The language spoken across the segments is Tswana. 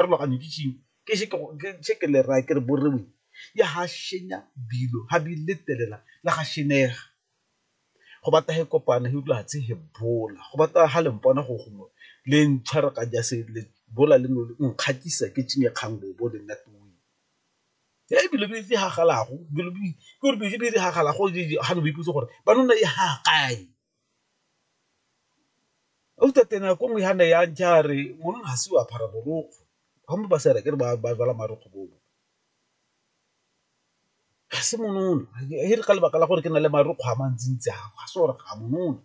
pharologanyo ke tšing ke še ke ke le raya ke re borewe ya ha shenya bilo ha bi le telela la ga shenega go bata he kopana he utlwa tse he bola go bata ha le mpona go gongwe le ntshwara ka ja se le bola le no nkgatisa ke tšing ya kgang bo bo le nna tu e bilo bi tsi ha galago bilo bi ke re bi bi ha galago ha no bi putso gore ba nona e ha kae Ausi teng nako nngwe ha ne ya ja re ngwana ha se o apara borokgo ha mpe ba sa re akere ba ba jala marokgo bo ga se monono e re ka lebaka la gore ke na le marokgwe a mantsi ntsi a ga se gore ga monono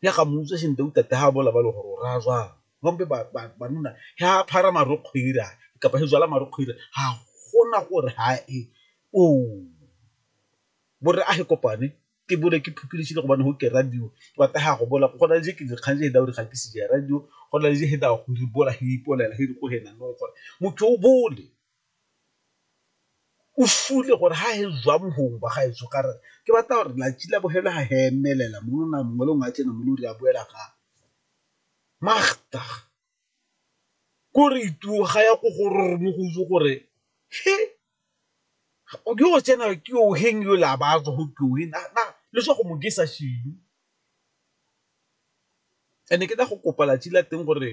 ya ga motse sentle o tate ga bola ba le gore o raya jwang ba mpe ba banna ga apara marokgwe ira kapa go jala marokgwe ira ga gona gore ha e o bo re a e kopane ke bole ke phukilegile gobane go ke radio wa taga go bola go na le je ke dikgang je heda gore ga ke se ja radio go na le je heda go di bola he ipolela he go hena no gore motho o bole o fule gore ha he zwa mohong ba ga etso ka re ke batla gore la tšila bohela ha he emelela mo na mongwe le ngwa tsena mo lo re a boela ga magta ko re ituwa ga ya go gore mo go itse gore he o ke o tsena ke o heng yo la ba go ke o na na le so go mo ke sa shebe and ke tla go kopa latsi la teng gore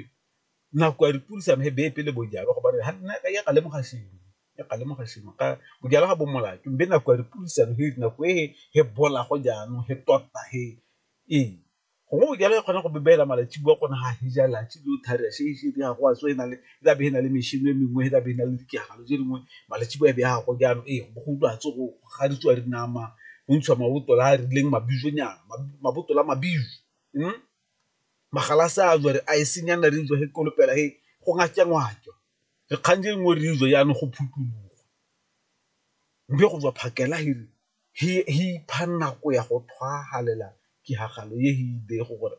nako ya dipuisano e beye pele bojalwa go bane ha nna ka ya ka lemoga sengwe ya ka lemoga sengwe ka bojalwa ga bo molato mme nako ya dipuisano he nako e he bola go jaanong he tota he ee. Gongwe o jala e kgona go bebeela malatsi bua gona ga heja latsi le o thari a se se ya go a tswe na le la be na le mešhini e mengwe la be na le dikegalo je dingwe malatsi bua be ya go jalo e go go utlwa tso go ga di tswa dinama go ntsha maboto la re leng mabizo nyana maboto la mabizo hm magala se a jwa re a e senya nna re utlwa he ko lopela he go ngaka ngwaka re kgang je nngwe re utlwa yana go phuthologa mme go tswa phakela he re he ipha nako ya go tshwagalela tiragalo e he idego gore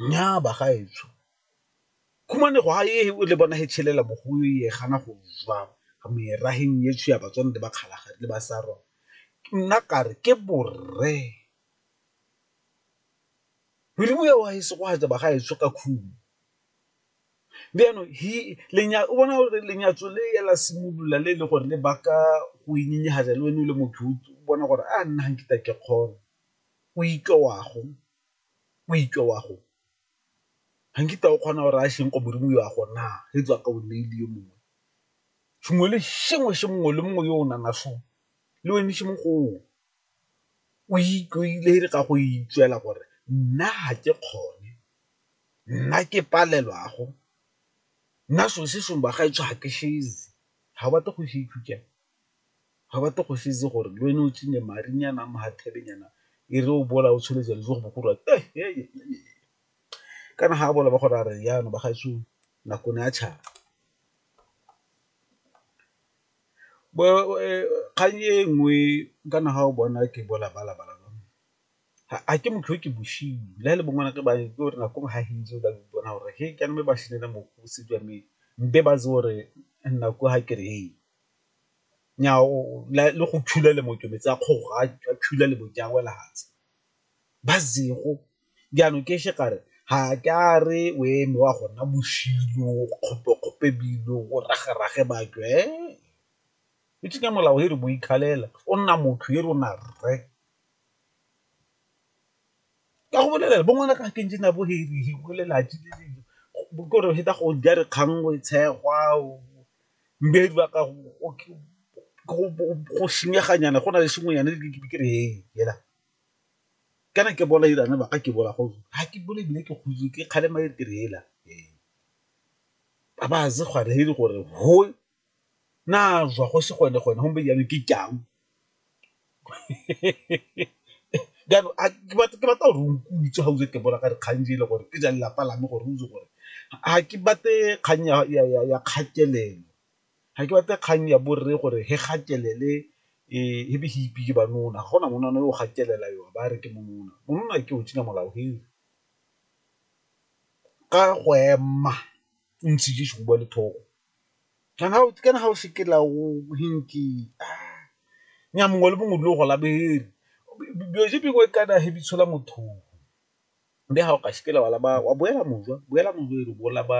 nnyaa bagaetsho khumanego ha ye he o le bona he tshelela mo go ye gana go zwa meraheng ye tsho ya batswana le bakgalagadi le basarwa nna kare ke borre Modimo ya wa he segogatsa bagaetsho ka khumo. Jaanong o bona gore lenyatso le la simolola le e le gore le baka go le wena o le motho o bona gore a nna ga nkitla ke kgona, o itlola wa go, o itlola wa go, ga nkitla o kgona gore a ko modimo o a go na re tswa ka o neile yo mongwe sengwe le sengwe se mongwe le mongwe yo o nang le wena . o ikaegile ka go itseela gore nna ga ke kgone, nna ke palelwa go, nna so se sengwe ba gaetsho ga ke shezi, ga o batle go se itse jang, ga o batle go se itse gore le wena o tsene marinyana a mahathebenyana e re o bola o tshwere jalo jo go bo gore kana ga a bola ba go raya re jaanong bagaetsho nako ne a tšhaba. kgang e nngwe kana ga o bona ke bo labalaba la lona ga ke motho o ke bosenyi le ga e le bo ngwana ke ba itse gore nako nngwe ga ke itse o ka ipona gore he kana me ba senela mo go se jwa me mpe ba itse gore nako ga ke re he nyaa le go thula le mo ke metsi a kgoga a thula le mo ke a wela fatshe. ba zero jaanong ke še kare ga ke a re o eme wa gonna boshilo kgopekgope bilo o ragerage batho e e tsenya molao e re bo ikgalela o nna motho e rona rre ka go bolelela bo ngwana ka ke ntse na bo he lelaji kore feta go ja re kgang o e tshegwa mme e dula ka go senyeganyana go na le sengwenyana ke re e fela. ka ne ke bola irane baka ke bola go ha ke bole bile ke kgutse ke kgale ma ke re ela ba ze gwa re hiri gore ho na zwa go se gone gone hombe yana ke kyang jaanong a ke batla ke batla gore o nkutlwe ga o ke bola ka dikgang di e le gore ke ja lelapa la me gore o itse gore ga ke batle kgang ya kgatelelo. ga ke batle kgang ya borre gore he gatelele he be he ipe ke banona, ga gona monana yo o gatelela yo a ba a re ke monona, monona ke o tšhina molao he ka go ema o ntse je sehuba le thogo kana ga o se ke la o naya mongwe le mongwe o dule o gola bere kana he be itshola mothong, mme ga o ka se ke la wa boela mojwa, boela mojwa e re o bo laba.